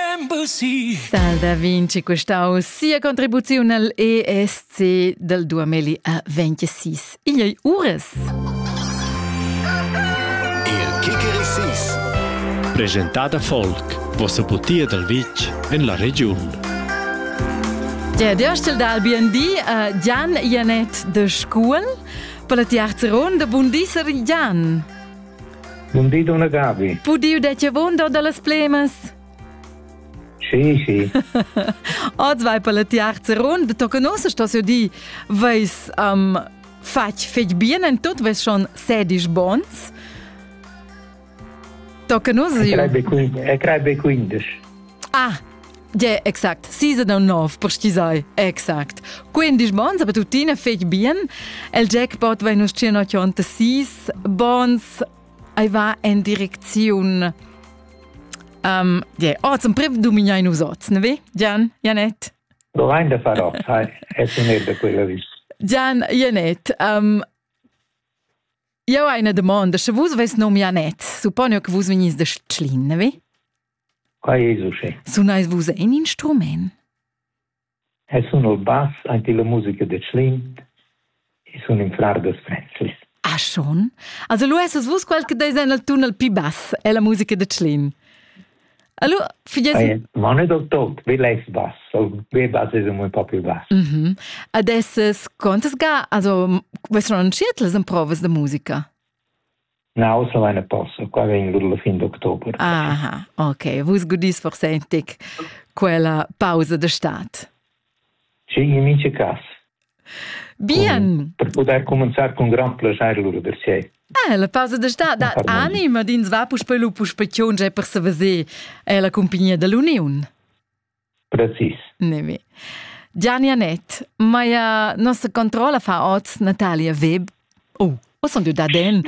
Stal da Vinci custau sia contribuziun al ESC dal 2026. Igl ei uras. Il Kikerisis. Presentada folk. Vossa putia dal vitg en la regiun. Ja, der stell dal BND a Jan Janet de Scuol. Per la tiarza ronda, bun di, Sir Jan. Non di donna Gabi. Pudiu de che wunder dallas plemas? Sì, sì. Oz vai per le tiarze rund, tu conosci sto se di, veis um, fatg fetg bien en tot veis schon sedisch bons? Tu conosci? E crei be 15. Ah, Ja, exact. Season 9, purschisai. Exact. Quindi bons, aber tuttina fec bien. El jackpot vai nus 186 bons. Ei va en direcziun um, yeah. Oh, zum priv dumignai nus oz, ne vi? Gian, Janet? Domanda farò, sai, è sunetda quella vis. Gian, Janet, um, eu hai una domanda, sche vus ves nom Janet, supponi che vus venies da Schlin, ne vi? Quai es uschè. Sunais vus in instrumaint? Eu sun il bass, aint illa musica da Tschlin e sun ün frar da Frenzlis. Ah schon? Also lu essas vus quel che deis en il tunnel pi bass, è la musica de Tschlin. Allora, figlies... Ma non è del tot, vi less bass, il mio bass è un po' più bass. Mm -hmm. Adesso, quantas ga, also, vessero anciet les improves de musica? Naus avain a posto, qua vegn lur la fin d'october. Aha, ok. Vus gudis forsentic quella pausa de stat. Sì, in mince cas. Bien. Per poter cominciare con gran piacere loro per sé. Eh, la pausa de stat dat anima dins va puspei lu puspei tgiunge per se veser è la compagnia dell'Union. Precis. Nevi. Gianni Anett, maia nossa controlla fa oz Natalia Web. Oh, o sun du daden?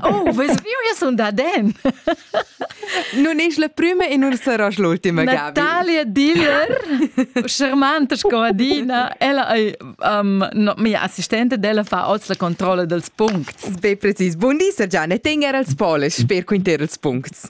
Oh, ves viu, io sun daden. Nun es la prima e nun saras l'ultima, Gabi. Natalia Diller, charmante sco adina, ella è um, no, mia assistente, ella fa oz la controlla dels puncts. Be precis. Buon di, Sir Gianni, tener als poles, sper quinter els puncts.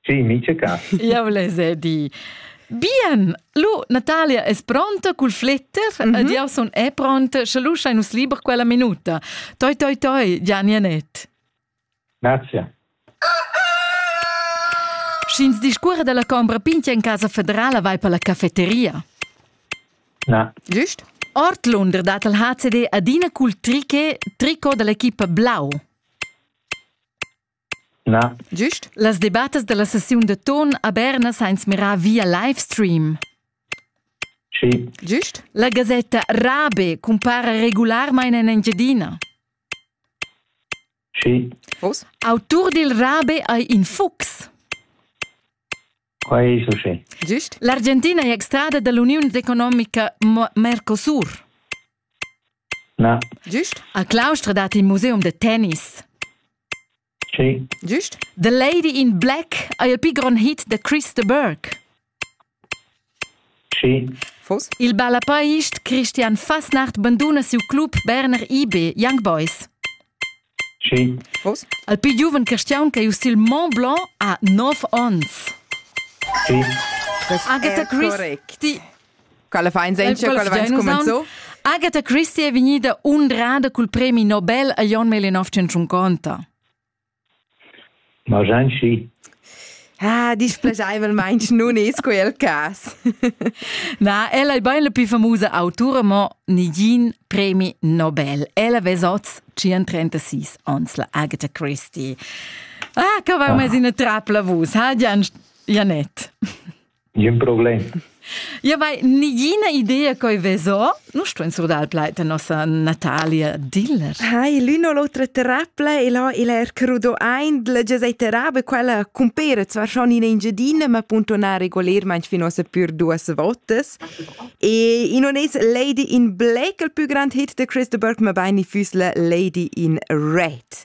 Sì, mica ca. Jau les he di. Bien, lu Natalia es pronta cul fletter mm -hmm. ed jau sun è pronta, sche lu schai nus liber quella minuta. Toi, toi, toi, Gianni Anet. Grazie. Sch'ins discurre della combra pintia in casa federala vai per la cafeteria? Na. Giust? Ortlunder dat al HCD adina cul triche, trico dell'equipa blau. Na. Gist. Las debattas da la sessiun da ton a Berna sa ins mirar via livestream. Sì. Gist. La gasetta Rabe cumpara regularmain en Engiadina. Sì. Vos? Autur dil Rabe ei in fuchs. Quai es uschè. Gist. L'Argentina è extrada da l'uniun economica Mercosur. Na. Gist. A Claustra dat il museum da tennis. Sì. Gist. The Lady in Black è il più grande hit da Christa Burke. Sì. Fos? Il ballapaist Christian Fasnacht banduna siu club Berner IB Young Boys. Vus? Al pli giuven cristiaun ch'ei uss il Mont Blanc ha nov onns. Sì. Agatha Christie. Ti Quella fa insegna, quella fa incumenzo. Agatha Christie è vegnida undrada cul premi Nobel a Jon Melinoff 150. Margenci. Ah, displegaivelmaing nun es quel cas. Na, ella è bain la più famosa autura, ma nigin premi Nobel. Ella vez oz 36 ans la Agatha Christie. Ah, che va mezz in trapla vus, ha Janet? Ün problem. Ia vai nigina idea coi vezo. Nu stuin surdar plai da nossa Natalia Diller. Hai, l'una o l'autra terapia e là il er crudo ein la gesei terapia quella cumpera zwar schon in Engiadina, ma punto na regolerment fino a pür duas votas. E in on es Lady in Black il più grand hit de Chris de Burke, ma bain i füss la Lady in Red.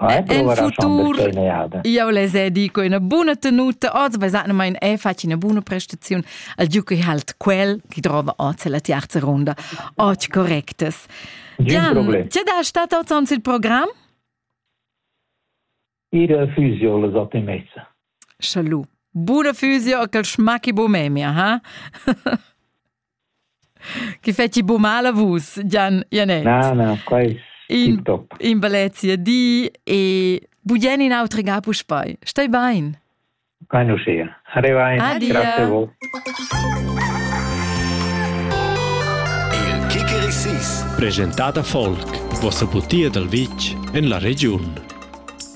En futur jau les è dico ina buna tenuta oz basanamain è fatg ina buna prestaziun al Giuki halt quel che trova oz la terza ronda oz correctas. Gian, ce da stat oz ans il program? Ir fusio les ottimezza. Salut. Buona fusio a quel schmacchi bo memia, ha? Che feci bu mala vus, Gian Janet? Na, na, qua è in, top. In bellezia di e bugen in autre ga puspei. Stai bein? Qua non sia. Arriva in. Adia. Grazie a voi. Il Kikirissis, presentata folk, vostra butia dal vitg en la regiun.